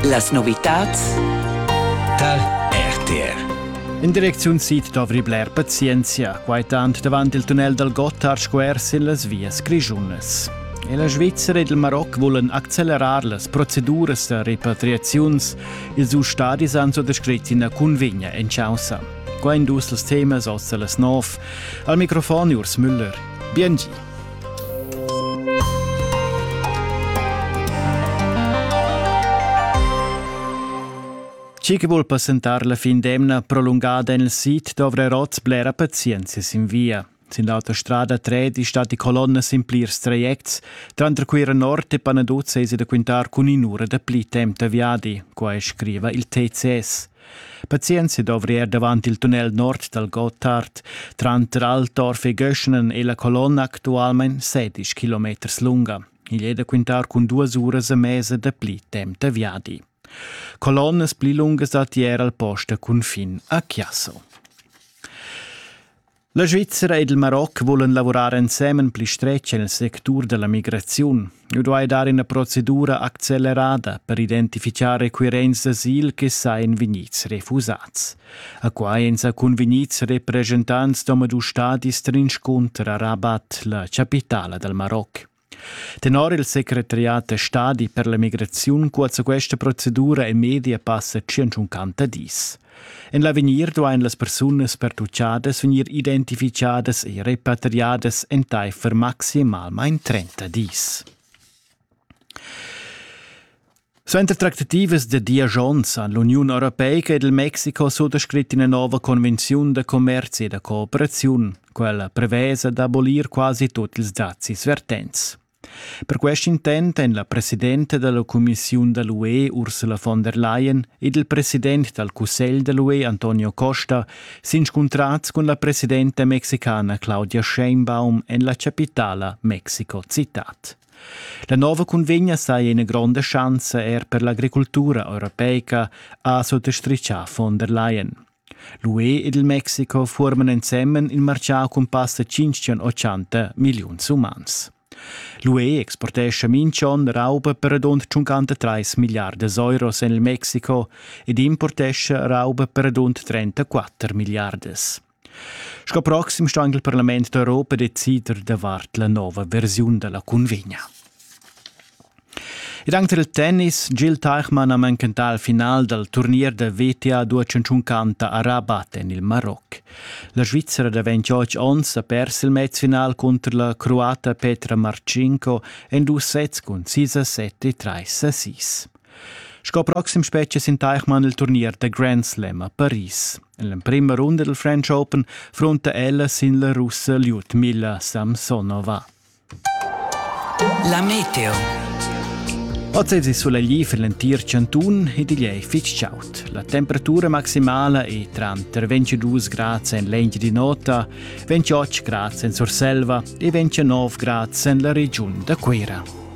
Las novitads tar RTR. In direcziun sid dovri bler pazienzia, quai tant davant il tunnel dal Gotthard square sin las vias grischunas. E la Svizzera ed il Maroc vulan accelerar las proceduras da repatriaziuns. Ils dus stadis han so descrit ina cunvegna en causa. Quai dus els temas oz las nov. Al microfon Urs Müller. Bien Chi che vul passentar la fin d'emna prolungada en il sid dovrà oz blera pazienza sin via. Sin l'autostrada 3 sta die Kolonne sin plirs trajects, tranter Cuira Nord e Panaduz esi da quintar cun in'ura da pli temp da viadi, qua scriva il TCS. Pazienza dovri er davant il tunnel nord dal Gottard. Tranter Altorf e Göschenen è la colonna actualmain 16 km lunga. Il è da quintar cun duas uras e mesa da pli temp da viadi. Colonnas pli lungas datti er al post a cunfin a Chiasso. La Svizzera ed il Maroc vulan lavurar ensemen pli stretg nel sectur della migraziun. Eu duai dar ina procedura accelerada per identifichar requirents d'asil che sain vegnids refusats. A quai èn sa cunvegnids representants d'omadus stadis trinscunter a Rabat, la chapitala dal Maroc. Tenor il secretariat da stadi per la migraziun cuozza questa procedura e media passa 150 dis. En l'avegnir duain las persunas pertuchadas vegnir identificadas e repatriadas entaifer maximalmain 30 dis. Suenter tractativas da diesch onns han l'Uniun europeica ed il Mexico suttascrit ina nova convenziun da commerzi e da cooperaziun, quella prevesa d'abolir quasi tut ils dazis vertents. Per quest intent èn la presidenta dalla cumissiun da l'UE Ursula von der Leyen ed il president dal cussegl da l'UE Antonio Costa s'inscuntrads cun la presidenta mexicana Claudia Sheinbaum en la chapitala Mexico-Citat. La nova cunvegna saja ina gronda schanza er per l'agricultura europeica, ha suttostrichà von der Leyen. L'UE ed il Mexiko forman ensemen il martgà cun passa 580 milliuns umans. L'UE exportescha minch'on rauba per radund 53 miliardas euros en il Mexiko ed importescha rauba per radund 34 miliardas. Sco proxim sto anche il Parlament d'Europa decider davart la nova versiun della convegna. Ed anche del tennis, Gil Teichmann ha manchentà il final dal turnier da VTA duaciuncanta a Rabat en il Maroc. La Svizzera da 28 onns ha pers il matchfinal contro la croata Petra Marcinko en dus sets cun 6 a 7 e 3 a 6. Sco proxim spetga sin Teichmann il turnier da Grand Slam a Paris. En l'emprima runda del French Open fronta ella sin la russa Lyudmila Samsonova. La meteo. Ozzesi soleglier für l'entir Cantun e digl ei fitg chaud. La temperatura maximala è tranter 22 grad en l'engi di nota, 28 grad en Surselva e 29 grad en la regiun da Cuira.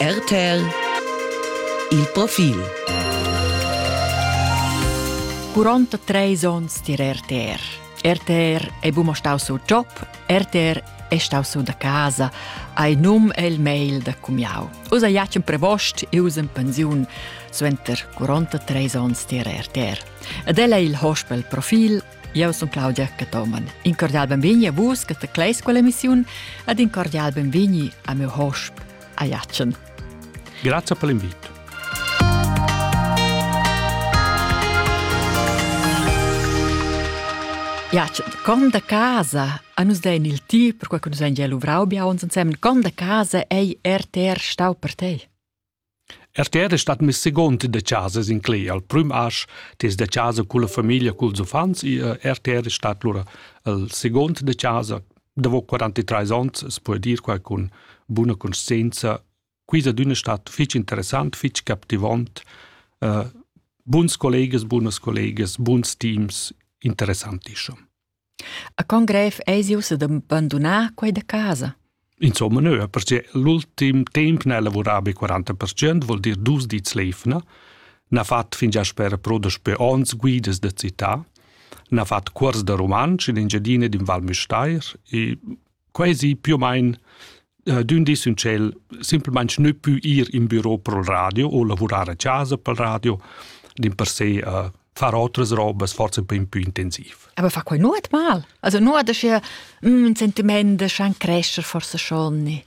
RTL Il profil Curonta treis onns tier RTR. RTR è buma stau sur job, RTR è stau sur da casa, hai num e il mail da cumiau. Usa iacen prevost e usa in pensiun suenter 43 onns tier RTR. Ed ella è il hospel profil Eu sun Claudia Cathoman. In cordial benvegni a vus che tecleis quella emissiun ed in cordial benvegni a meu hosp, a Jatschen. Grazie per l'invito. Jatschen, con da casa, a nus dein il ti, per qual nus ein gia luvrau bia uns ensemen, con da casa ei RTR stau per te? RTR es stat miss seguond da chasa sincler al prüm asch tes da chasa culla famiglia culs uffants e RTR es stat lura il seguond da chasa davo 43 ons as po dir quai cun buna cuntscienza quis ad üna stat fich interessant fich captivant uh, buns collegas bunas collegas buns teams interessantischo A con grev eisi ussa da bandunar quei da casa? Insomma, neu, perché l'ultim temp ne lavurava be 40%, vuol dir dus dits leifna, n'ha fatto fingià sper pro daspö ons guidas da città, n'ha fatto cuors da rumantsch in Engiadina d'in Val Müstair e quasi più o meno uh, d'ün dis ün tschel simplamaing nu pü ir in büro pro il radio o lavurar a casa pel radio, dimpersè uh, far otras robas forse un po' più intensiv. Aber fa quai nuot mal? Also nuot da sche un mm, sentiment da schan crescer forse schon nicht.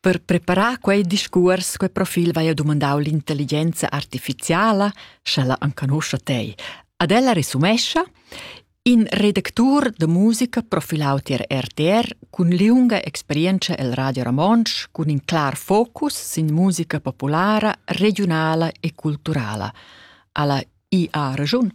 Per preparar quei discuors, quei profil vai a dumandau l'intelligenza artificiala, sch'ella enconoscia tei. Ad ella resumescha in redactur de musica profilau tier RTR cun liunga experienza el Radio Ramonsch cun in clar focus sin musica populara, regionala e culturala. Alla IA regiun.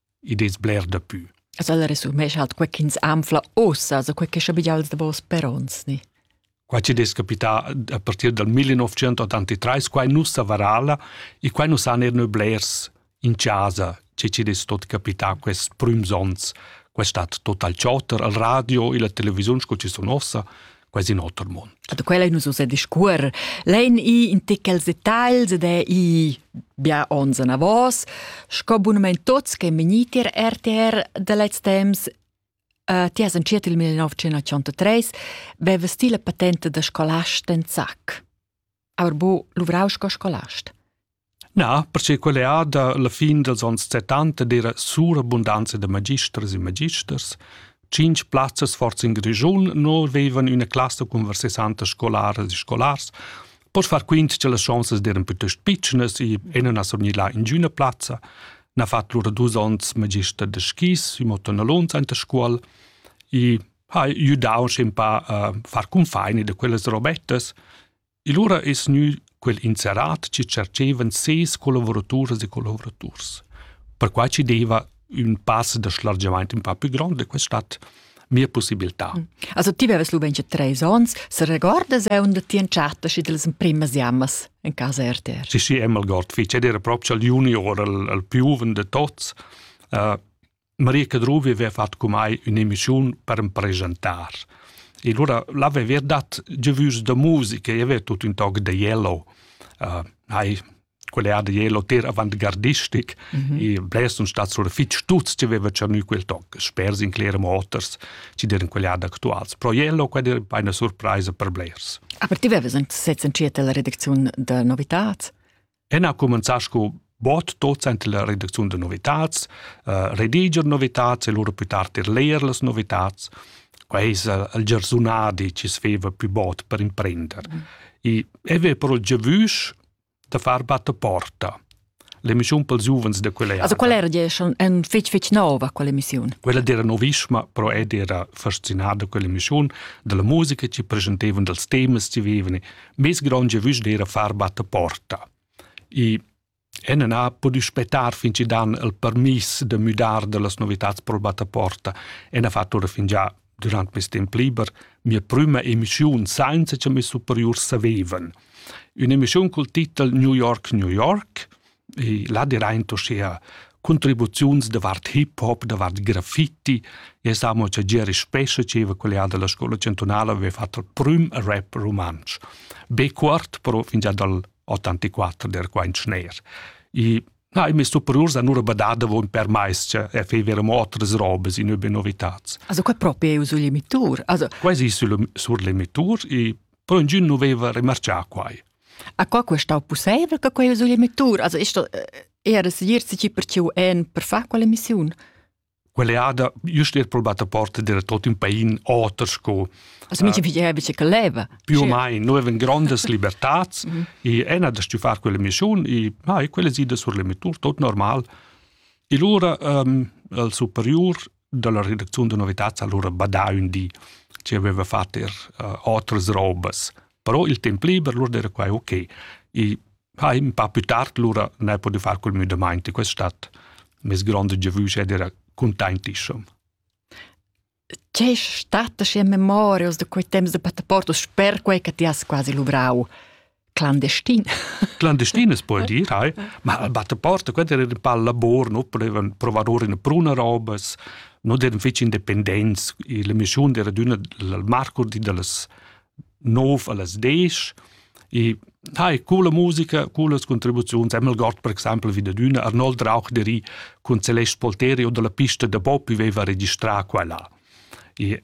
id es bler dapü. As al resumescha halt quai chi'ns anfla uossa, so quai che schabigials da vos peronts ni? Qua ci des capità a partir dal 1983, quai nus a Varala, e quai nus han er blers in casa, che ci des tot capità quest prüms ons, quest stat total chotter al radio e la televisiun sco ci sun ossa, quasi in oter mund. Da quella nus ussa discuer. Lein i in tichels detagls ed è i bia ons anavos, sco bunament tots che meniti RTR da lez temps Uh, ti has entschiet il 1983, veva stile patente da scolast en zac. Aber bu luvrau sco scolast? Na, perché quella è da la fin dels ons 70 era surabundanza da magisters e magisters. Cinc plazzas forse in Grischun non avevan una classe con 60 scolares e scolars. Pois far quint che las chances eran piuttosto pitschnas e ena na surgnì là in giuna plazza. Na fatto lura dus ons magister de skis, imo tonna lunz anta scuol e ha iu dau scempà uh, far cunfaini de quellas robettas e lura es gnü quel inserat chi cercevan ses collavoraturas e collaboraturs. Perquai ci deva ün pass de schlargiamaint un pa più grond de questa stadt mia possibilità. Mm. Also ti beves lu ben treis ons, se regorda se und ti entschata schi delle primas jammas in casa RTR. Sì, sì, emmal gott fich, ed era proprio al junior, al, al più de tots, uh, Maria Cadruvi aveva fatg cun mai ün'emissiun per am presentar. E lura l'aveva dat giavüs da musica e aveva tut ün toc da Yellow. Uh, hai quella da Yellow ter avant-gardistic mm -hmm. e blers sun stats sur fitg tuts che aveva tschernü quel toc, spers in Clera Motors, ci deren quellada actuals. Pro Yellow quella era una surpresa per blers. Aber ti avevas anche sezs entschiet la redacziun da novitats? En ha cumenzà sco bot docent la redacziun da novitads, uh, rediger novitads e lura più tard er leer las novitads. Quai es il giarsunadi chi sveva più bot per imprender. Mm. E eve però giavüsch da far batta porta. L'emissiun pels giuvens de quelle Also qual era diesch en fitch fitch nova quell'emissiun? Quella era novischma, però ed era fascinada quell'emissiun della musica ci presentevano dels temas ci vivevano bis gronge vusch d'era far batte porta. I en ha podi spettar fin ci dan il permis de müdar de las novitats pro batte porta en ha fatto fin già durant mes temp liber mia prima emissiun sainza che mes superiors savevan. Un'emissiun col titel New York, New York e là diraint uschea contribuziuns davart hip hop, davart graffiti. E samo cha Gieri Spescha, dscheva collega della scola cantunala, aveva fatto il prüm rap rumantsch. Be cuort, però fingià dal 84 der quaint schner. E na, i messo priors a nur badar davon per mais, che e feverem otras robes in übe novitats. Also quai proprio è sul limitur. Also quasi sul, sur limitur e però ingün nu veva remarchà quai. Aqua quo stau pusseivel che quei usigl emettur? Also ist das eher segir si per ciu en per far quella missiun? Quell'eada just er probata porta della tot un pain oter sco Also mincha figlia bice che leva. più o mai noi avem grandes libertats Mhm. e ena da stu far quella missiun e ah, e quella sida sur l'emettur tot normal. E lura um, al superiur dalla redacziun da novitads allura badà ün di che aveva fatto er uh, otras robas. Però il temp liber lura era quai ok. E ha un po' più tard lura ne potuto fare col müdamaint e questa stat mes grande gevüsch ed era contentissim. C'è stata in memoria da quei temps de passaporto, sper quei che ti has quasi luvrau? clandestin. Clandestin es puoi dir, hai, ma al battaporta, quant era in pal labor, no potevan provar in bruna robas, no devan fich independents, la mission era d'una al marco di dallas 9 allas 10, e hai coole musica, cooles contribuziuns, Emil Gott per exempel wie dad üna, Arnold Rauch deri cun Celeste Polteri o dalla pista da Bob viveva registrà qua là. E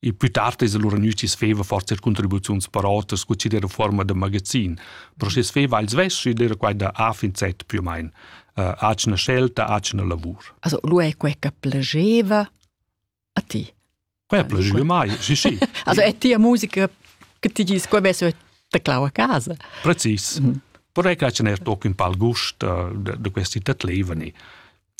Il pü tard es lura gnüts sveva forsa contribuziuns per oters scu chi'd era fuorma da magazin, però schi sveva il svess ed era quai da A fin Z più o main. Uh, atgna scelta, atgna lavur. Also, lu è quei che piaceva a ti? Quei piaceva mai, sì sì. also è tia musica che ti dici che avesse teclau a casa? Precis. Mm. Però è che ce n'è toc un pal gust uh, da questi tatlevani.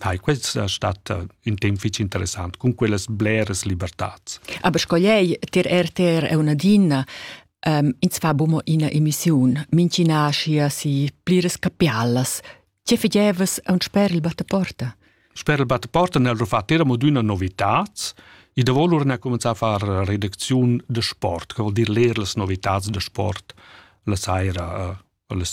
ha questa stata in temp fitg interessant cun quellas bleras libertads. Aber scogliei ter RTR è una dinna um, ins fa bumo ina emissiun, mincina schia si pliras capialas. Che fidevas a un sper il battaporta? Sper il battaporta nel rufat era moduna novitats, e da volur ne comenza a far redacziun de sport, che vuol dir leer las novitats de sport la saira, uh, les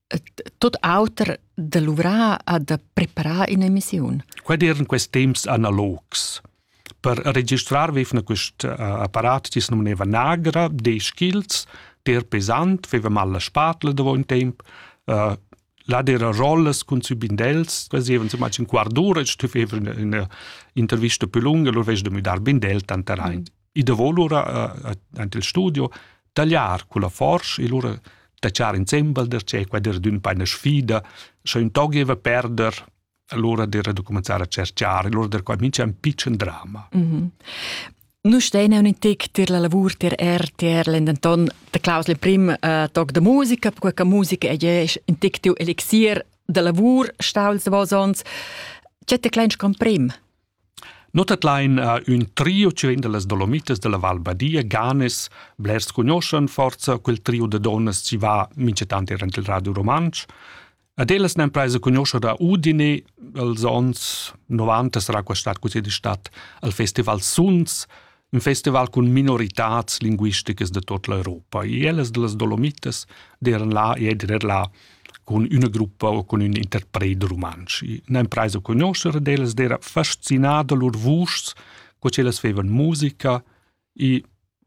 tut auter da luvrar a da preparar in'emissiun. Quai diran questi temps analogs. Per registrar vevna quest uh, apparat tis nomineva Nagra, dieci chils, der pesant, veva mal la spatla davo un temp, uh, là dera rolles cun subindels, quasi even zum in quart'ura, stüff even in intervista più lunga, lur vez de müdar bindel tanter ein. Mm. I davo lura aint il studio tagliar culla forsch e lura tachar insembel der che quai der d'ün paina sfida scha ün tog gieva perder allura der da cominciar a cerchar e lura der qua mincha ün pitschen drama. Mm -hmm. Nu stein eu in tic tir la lavur tir er tier lendenton de Klaus le prim uh, toc de musica, perché che musica è je in tic tiu elixir de lavur staul se vos ons. C'è te klein comprim? No tadlain uh, ün trio cirenda las Dolomitas della Val Badia, Ganes, blers cugnoschan forza quel trio de donnas chi va minchetant irant il Radio Romansch. Ad ellas n'han preso cugnoscher da Udine, els ons 90 sarà quest'at così di stat al Festival Suns, un festival cun minoritads linguisticas de tot l'Europa. E ellas de las Dolomites deran là e eder là con una gruppa o con un interprete romansch. Ne impraisa conoscere d'ellas era fascinada lur vuschs, co ellas fevan musica, e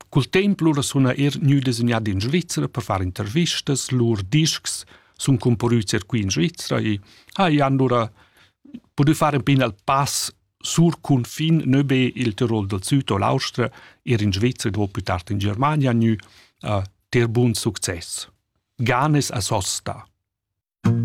col temp lura suna er gnü designat in Svizzera per far intervistas, lur discs sun comparüts er qui in Svizzera e ha e han lura podu fare un pin al pass Sur cunfin nö be il Tirol dal süd o l'Austria, eir in Svezia dopo più tard in Germania gnü a ter bun success. Ganes a Sosta.